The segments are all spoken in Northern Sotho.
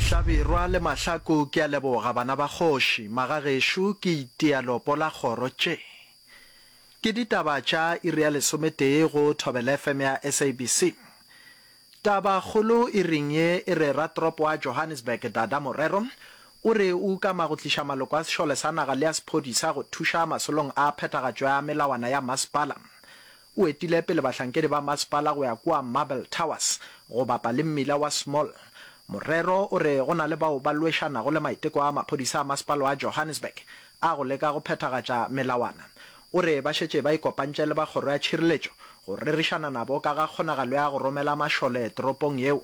Hlabirwa le Mahlaku ke a leboga bana ba kgoši, magagešo ke itia lopo la kgoro tše. Ke ditaba tša iri ya lesometee go Thobela FM ya SABC. Taba kgolo iring ye e re ratropo wa Johannesburg Dada Morero o re o ukama go tliša maloko a sešole sa naga le a sephodisa go thuša masolong a phethagatšo ya melawana ya masepala O etile pele bahlankedi ba masepala go ya kua Marble Towers go bapa le mmila wa Small. Morero o re go na le bao ba lwešanago le maiteko a maphodisa a masepala wa Johannesburg a go leka go phethagatša melawana. O re ba šetše ba ikopantše le ba kgoro ya tšhireletšo go rerišana nabo ka ga kgonagalo ya go romela mašole toropong yeo.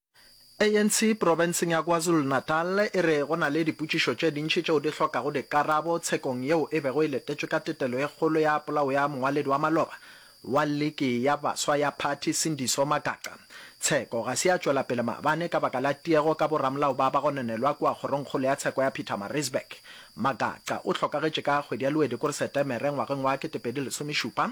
ANC profenseng ya KwaZulu-Natal e re go na le dipotšišo tše dintši tšeo di hlokago dikarabo tshekong yeo e bego e letetšwe ka tetelo e kgolo ya polao ya mongwaledi wa maloba wa liki ya baswa ya phathi Sindiso Magaqa. Tsheko ga se ya tšwela pele maabane ka baka la tiego ka boramolao ba bagononelwa kua kgorongkgolo ya tsheko ya Pietermaritzburg. Magaqa o hlokagetše ka kgwedi ya Luedikore-Setemere ngwageng wa 2010.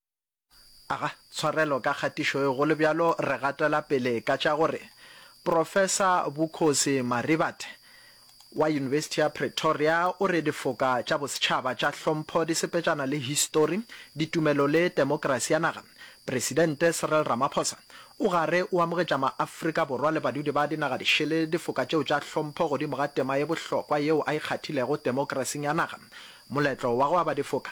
Aga tshwarelo ka kgatišo e golo bjalo re gatela pele ka tša gore Professor Bukhosi Marivate wa Yunibesithi ya Pretoria o re difoka tša bosetšhaba tša hlompho di sepetšana le histori, ditumelo le temokrasi ya naga. Presidente Cyril Ramaphosa o gare o amogetša ma-Afrika Borwa le badudi ba dinaga dišele difoka tšeo tša hlompho godimo ga tema ye bohlokwa yeo a e kgathilego temokrasing ya naga. Moletlo wa go aba difoka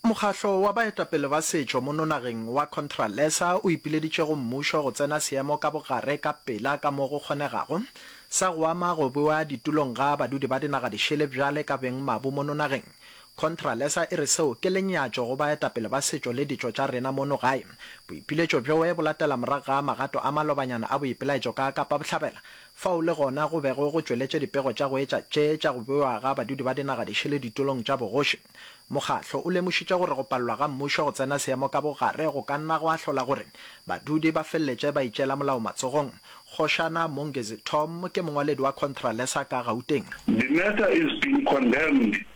Mokgahlo wa baetapele ba setšo mo nonageng wa Contralesa o ipileditše go mmušo go tsena seemo ka bogare ka pela ka mo go kgonegago sa go ama go bewa ditulong ga badudi ba dinaga dišele bjale ka beng mabu mo nonageng. Contralesa e re seo ke lenyatšo go baetapele ba setšo le ditšo tša rena mono gae. Boipiletšo bjoe bo latela morago ga magato a malobanyana a boipelaetšo ka Kapa Bohlabela Fao le gona go bego go tšweletše dipego tša go etša tše tša go bewa ga badudi ba dinagadišele ditulong tša bogoši. Mokgatlo o lemošitše gore go palelwa ga mmušo go tsena seemo ka bogare go ka nna gwa hlola gore badudi ba feleletše ba itšeela molao matsogong. Kgošana Mongezi Tom ke mongwaledi wa Contralesa ka Gauteng. The matter is being condemned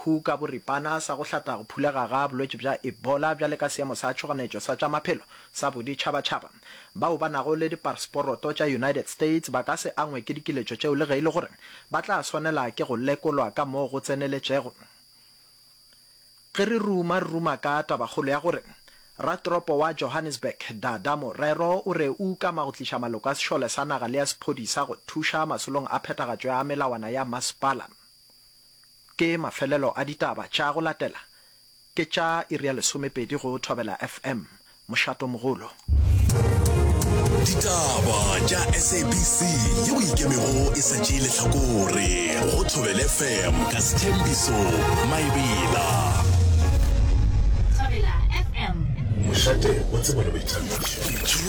Who ka boripana sa go hlata go phulega ga bolwetši bja Ebola bjale ka seemo sa tšhoganetšo sa tša maphelo sa boditšhabatšhaba. Bao ba nago le diparsporoto tša United States ba ka se angwe ke dikiletšo tšeo le ge e le gore ba tla swanela ke go lekolwa ka mo go tseneletšego ge re ruma re ruma ka tabakgolo ya gore Ratoropo wa Johannesburg, Dada Morero o re o ukama go tliša maloko a sešole sa naga le a sephodisa go thuša masolong a phethagatšo ya melawana ya masepala. Ke mafelelo a ditaba tša go latela ke tša iri ya lesomepedi go Thobela FM, Mošato Mogolo. Ditaba tša SABC ye o ikemego e sa tšee lehlakore go Thobela FM ka Sethembiso Maebela. Thobela FM. Mošate o tsebana boithabišo.